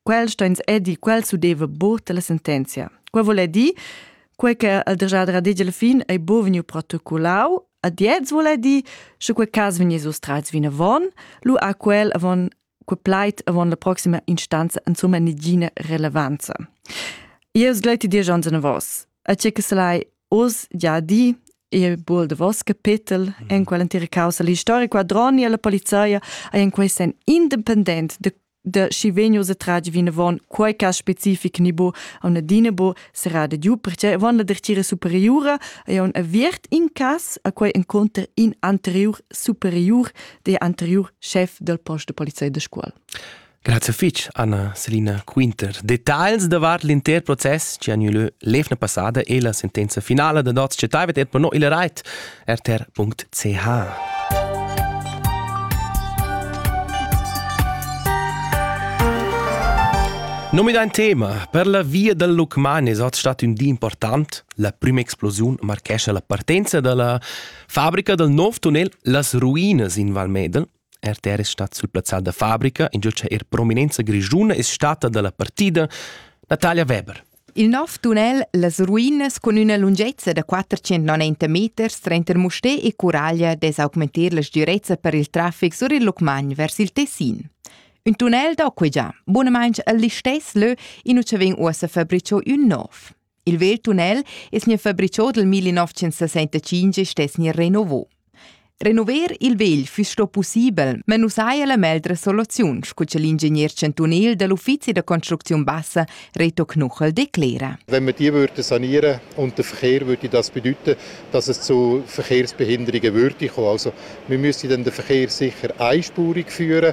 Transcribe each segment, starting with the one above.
quel stoins edir quel s'udeva bot la sentenzia. Quei vole dir, quei che il degiadra dice alla fin è bo vegniu protocollau, ad jetzt vole dir, sche quei cas vegni sustrats vin avon, lu a quel avon quei plait avon la proxima instanza insomma nigina relevanza. Io sgleti dir John a vos, a ce che se lai os già di e bol de vos capitel mm. in quell'intera causa. L'historica quadroni e la polizia è in quei sen independent de de schi vegnius a tratg vinavon quei cass specific ni bo a una dina bo serà de giu perché avon la dertgira superiura ei un aviert in cass a quei encontrer in anterior superiur de anterior chef del post de polizei de scuola Grazie fitch, Anna Selina Quinter. Details davart l'inter process che ha gnü lö l'evna passada e la sentenza finala da Dots Cetaivet et per no il rait. rtr.ch Nomi da tema per la via dal Lucmanes è stato un di important. La prima explosione marchescia la partenza dalla fabbrica dal nuovo tunnel Las Ruinas in Val Medel RTR es stat sul plazzal da fabrica, ingio cha eir prominenza grischuna es stata da la partida Natalia Weber. Il nov tunnel Las ruinas cun üna lungezza da 490 meters tranter Musté e Curaglia dess augmentar la sgürezza per il trafic sur il Lucmagn vers il Tessin. Un tunnel da quei già, bunamainch al listess lö, in ucha vegn uossa fabricho ün nov. Il vegl tunnel es gnü fabricho dal 1965 e stess gnir renovò. Renover il vegl füss sto pussibel, ma nu saja la meglra soluziun, scu cha l'ingegner chantunil da l'Uffizi da construcziun bassa Reto Knuchel declera. Wenn wir die würden sanieren und der Verkehr würde das bedeuten, dass es zu Verkehrsbehinderungen würde kommen. Also wir müssen dann den Verkehr sicher einspurig führen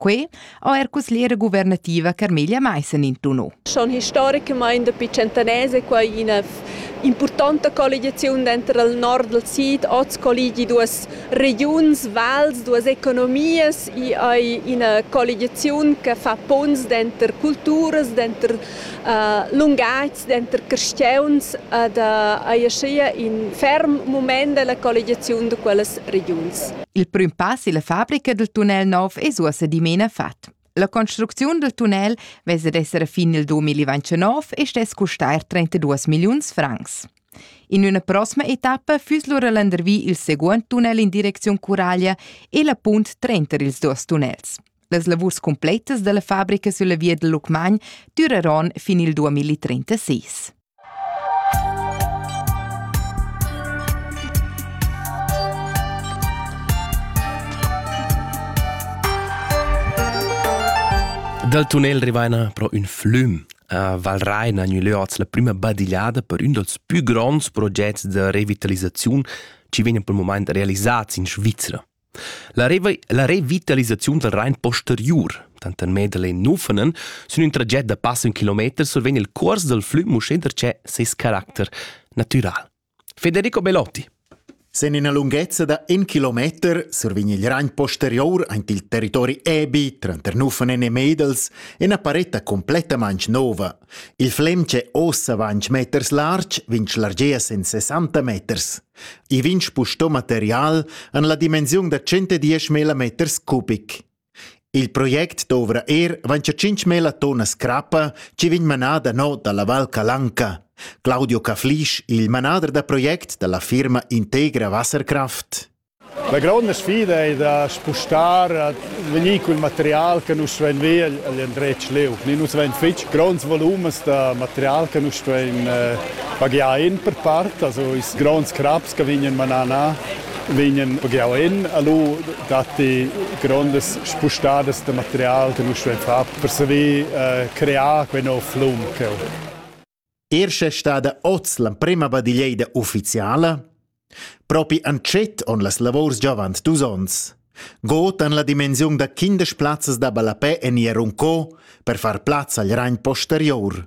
Quei ha er cuslera guvernativa Carmelia Meissen intuno. Schon historicamain dapi centeners è quai ina impurtanta colligiaziun denter il nord dal sid, oz colligi duas regiuns, vals, duas economias e ina colligiaziun che fa ponns denter culturas, denter lungatgs denter carstgauns ed ei aschia in ferm mument dalla colligiaziun da quellas regiuns. Il prüm pass illa fabrica dal tunnel nov es uossa dimena fat. La construcziun del tunnel vess ad esser fin nel 2029 e stess custar 32 milliuns francs. In üna prossima etappa füss lura landervi il seguond tunnel in direcziun Curaglia e la punt trenter ils duos tunnels. Las lavurs cumpletas dalla fabrica sulla via dal Lucmagn dureron fin il 2036. Dal tunnel rivaina pro ün flüm a Valrein ha gnü lö oz la prüma badigliada per ün dals pü gronds progets da revitalisaziun chi vegnan pel mumaint realisats in Svizra. La, revi la revitalisaziun dal Rain posteriur, tanter Medelein e Nufenen, sün ün traget da passa ün kilometer survegn il cuors dal flüm uschè darcheu ses caracter natüral. Federico Belotti. Sen ina lunghezza da in kilometer survegn il Rain posterior aint il territori Ebi tranter Nufenen e Medels ina paretta complettamaing nova. Il flem che ossa vainch meters larg vegn schlargea sen 60 meters. I vegn spustò material en la dimensiun da 110 meter cubic. Il project dovra er vaincha 5.000 tonnas crappa chi vegn manada no dalla Val Calanca. Claudio Caflisch, il manader da project dalla firma Integra Wasserkraft. La gronda sfida ei da spustar a vegnir cul material che nus stuein ver egl endretg leu. Ni nus vein fetg gronds volumes da material che nus stuein eh, pagiar en per part, also ils gronds craps che vegnan manana vegnan pagiau en, allo datti grondas spustadas da material che nus stuein far per saver eh, crear quei nov flum cheu. Er sche è stada oz l'emprema badiglieida uffiziala? Propi entschet on las lavors giovant dus onns. God en la dimensiun da quindesch plazzas da ballapè en Jerunco per far plaz al ragn posterior.